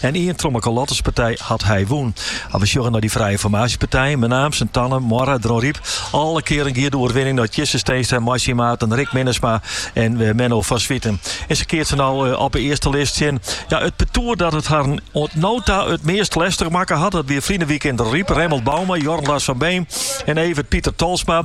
En ien trochmekoar lotterspartij hat hy wûn. As we sjogge nei dy frije formaasjepartijen, Menaam, Sint Anne, Moarre, Dronryp, alle kearen gie de oerwinning nei Tjisse Steenstra, mei syn maten Rick Minnesma en Menno van Zwieten. En se keatse no op de earste list tsjin ja, it partoer dat it harren oant no ta it meast lestich makke hat. Dat wie ferline weekend yn Dronryp, Remmelt Bouma, Jorn Lars van Beem en Evert Pieter Tolsma.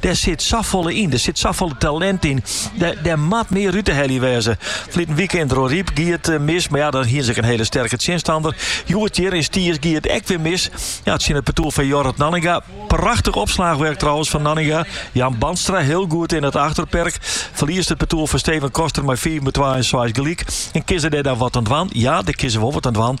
Dêr sit safolle yn, der sit safolle talint yn. Dêr, dêr moat mear út te helje wêze. Ferline weekend yn Dronryp gie it eh, mis, maar ja, dan hien se in hele sterke tsjinstander. Hjoed hjir yn Stiens gie it ek wer mis. Ja, tsjin it partoer fan Jorrit Nanninga. Prachtich opslachwurk trouwens fan Nanninga. Jan Bandstra hiel goed yn it achterperk. Ferliest it partoer fan Steven Koster mei 5 om 2 en 6 gelyk. En kinst dêr dan wat oan dwaan? Ja, dêr kinne se wol wat oan dwaan.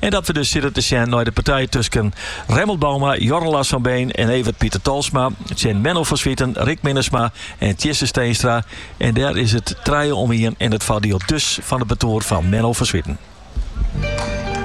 En dat we dus sitte te sjen nei de partij tusken Remmelt Bouma, Jorn Lars van Beem en Evert Pieter Tolsma, tsjin Menno van Zwieten, Rick Minnesma en Tjisse Steenstra. En dêr is it trije om ien en it foardiel dus fan it partoer fan Menno van Zwieten.